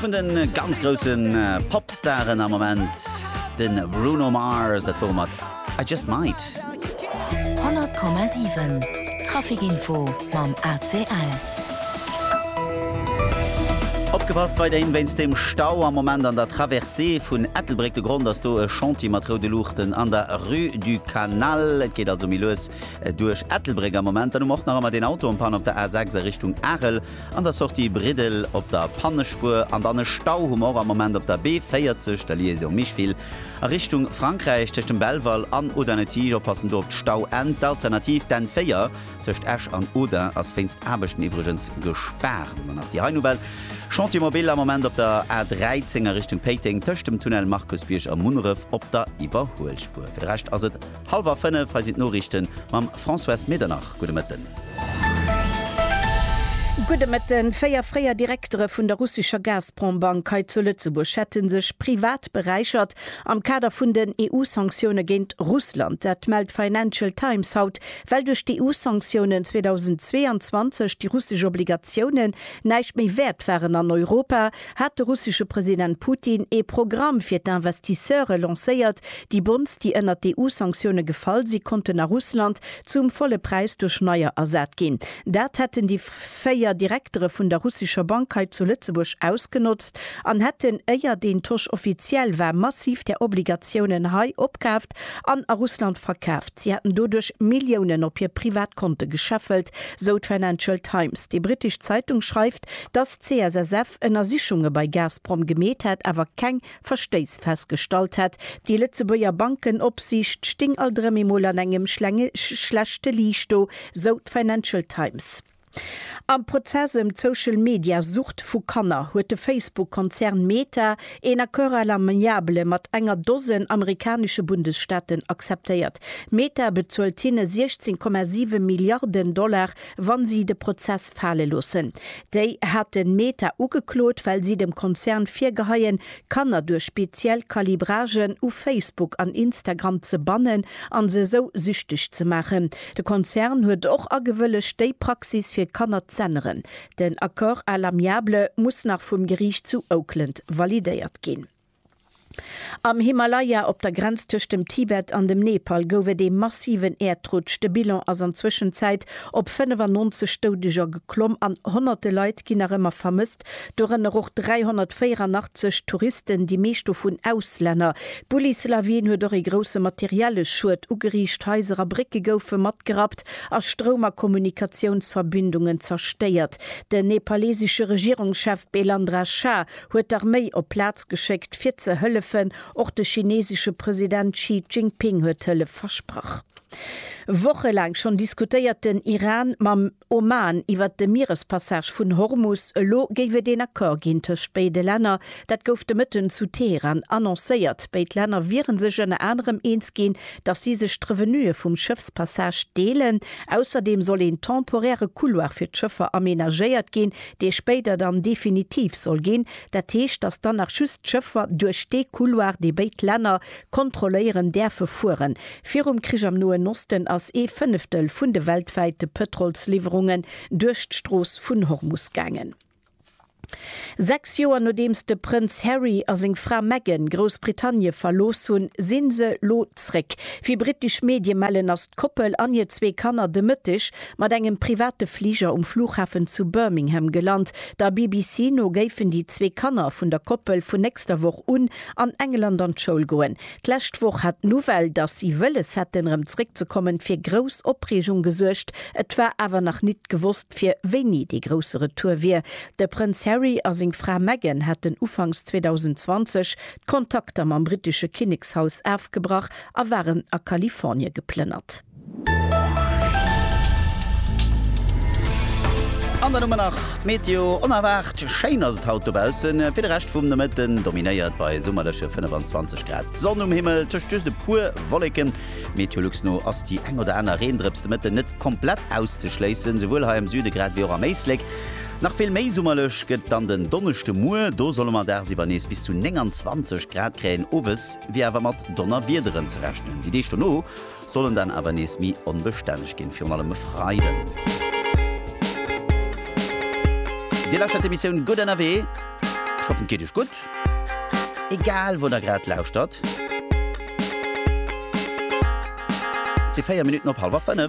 Vun den ganz groussen Popstaren am Moment den Bruno Mars, dat wor mat I Just Might. 100,7 Trafikinfo mam ACL. Opgepasst weiderhin wéinst dem Stau am Moment an der Traversée vun Ettelbréck. De Grond ass do e Chantier mat roude Luuchten an der Rue du Canal. Et geet also méi lues duerch Ettelbréck am Moment. Dann hu mer och nach ëmmer deen Auto en panne op der A6 a Richtung Arel. An der Sortie Briddel op der Pannespuer an dann e Stau hu mer och am Moment op der B40, der Liaison Micheville a Richtung Frankräich tëscht dem Belval an Audun-le-Tige. Oppassen do op d'Stauenn. D'Alternativ, d'N4 tëscht Esch an Audun ass wéinst Aarbechten iwwregens gespaart. An dann nach déi hei Nouvelle, Chantier mobile am Moment op der A13 a Richtung Péiteng tëscht dem Tunnel Markusbierg a Munneref op der Iwwerhuelspuer. Fir de Rescht ass et. Hallwer 5, hei sinn d'Noriichten mam Françoise Medernach. Gudde Mëtten. Gudde Mëtten. Véier fréier Direktere vun der russescher Gazprom-Bank hei zu Lëtzebuerg hätte sech privat beräichert am Kader vun den EU-Sanktioune géint Russland. Dat mellt d'Financial Times haut, well duerch d'EU-Sanktiounen 2022 déi russesch Obligatiounen näischt méi wäert waren an Europa. hat de russesche President Putin ee Programm fir d'Investisseure lancéiert. Déi Bonds, déi ënnert d'EU-Sanktioune gefall si konnten a Russland zum volle Präis duerch neier ersat ginn. Dat hätten déi véier Direktere vun der russescher Bank hei zu Lëtzebuerg ausgenotzt an hätten, éier deen Tosch offiziell war, massiv där Obligatiounen hei opkaaft an a Russland verkaaft. Si hätten doduerch Milliounen op hir privat Konte gescheffelt, sou d'Financial Times. Déi brittesch Zeitung schreift, Dass d'CSSF Ënnersichunge bei Gazprom gemeet hätt, awer keng Verstéiss festgestallt hätt. Déi Lëtzebuerger Bankenopsiicht sting alt erëm eemol an engem schlechte Liicht do, sou d'Financial Times. Am Prozess ëm d'Social-Media-Sucht vu Kanner huet de Facebook-Konzern Meta een Accord à l'amiable mat enger Dosen amerikanesche Bundesstaaten acceptéiert. Meta bezuelt hinne 16,7 Milliarden Dollar wa si de Prozess fale loossen. Déi haten Meta ugeklot, well si dem Konzern virgeheien, Kanner duerch speziell Calibragen u Facebook an Instagram ze bannen an se esou süchteg ze maachen. De Konzern huet och agewëllegt, déi Praxis fir Kanner z'änneren. Den Accord à l'amiable muss nach vum Geriicht zu Oakland validéiert ginn. Am Himalaya, op der Grenz tëscht dem Tibet an dem Nepal, gouf et ee massiven Äerdrutsch. De Bilan ass an Zwëschenzäit op 95 Doudeger geklomm an honnerte Leit ginn nach ëmmer vermësst, dorënner och 384 Touristen, déi meescht dovun Auslänner. D'Bullislawin huet och ee grousse materielle Schued ugeriicht, Haiser a Brécke goufe matgerappt a Stroum a Kommunikatiounsverbindungen zerstéiert. Den nepalesesche Regierungschef Belandra Shah huet d'Arméi op d'Plaz geschéckt fir ze hëllefen. Och de chinesesche President Xi Jinping huet Hëllef versprach. Woche laang schonn diskutéiert den Iran mam Oman iwwert de Mierespassage vun Hormus. Elo géif et een Accord ginn tëscht béide Länner. Dat gouf de Mëtten zu Teheran annoncéiert. Béid Länner wiere sech ënner anerem eens ginn, datt si sech d'Revenuë vum Schëffspassage deelen. Ausserdeem soll een temporäre Couloir fir d'Schëffer amenagéiert ginn, dee spéider dann definitiv soll ginn, dat heescht, datt dann nach just d'Schëffer duerch dee Couloir, dee béid Länner kontrolléieren, däerfe fueren. Virum Krich am Noen Osten ass ee Fënneftel vun de weltwäite Pëtrolsliwwerungen duerch d'Strooss vun Hormus gaangen. Sechs Joer nodeems de Prënz Harry a seng Fra Meghan Groussbritannie verlooss hunn, si se lo zréck. Wéi brittesch Medie mellen, ass d'Koppel an hir zwee Kanner de Mëtteg Mat engem private Fliger um Flughafen zu Birmingham gelant. Der BBC no géifen déi zwee Kanner vun der Koppel vun nächster Woch un an England an d'Schoul goen. D'lescht Woch hat d'Nouvelle, datt si wëlles hätten erëm zeréckzekommen, fir grouss Opreegung gesuergt. Et war awer nach nit gewosst, fir wéini dee grousse Retour wier. De Prënz Harry a seng Fra Meghan haten ufanks 2020 d'Kontakter mam brittesche Kinnekshaus afgebrach a waren a Kalifornie geplënnert. An dann hu mer nach d'Meteo, onerwaart schéin ass et haut dobaussen. Fir de Rescht vum Nomëtten dominéiert bei summerleche 25 Grad d'Sonn um Himmel, tëscht just e puer Wolleken. Meteolux no ass déi eng oder aner Reendrëps de Mëtten net komplett auszeschléissen, souwuel hei am Süde grad wéi och am Éislek. Nach vill méi summerlech gëtt dann den Donneschde, muer, do solle mer dagsiwwer nees bis zu 29 Grad kréien. Owes wier awer mat Donnerwiederen ze rechnen, déi Deeg dono Sollen dann awer nees méi onbestänneg ginn, virun allem e Freiden. Dir lauschtert d'Emissioun Gutt ënnerwee. Ech hoffen et geet iech gutt, egal wou der grad lauschtert. Et si 4 Minutten op hallwer 5.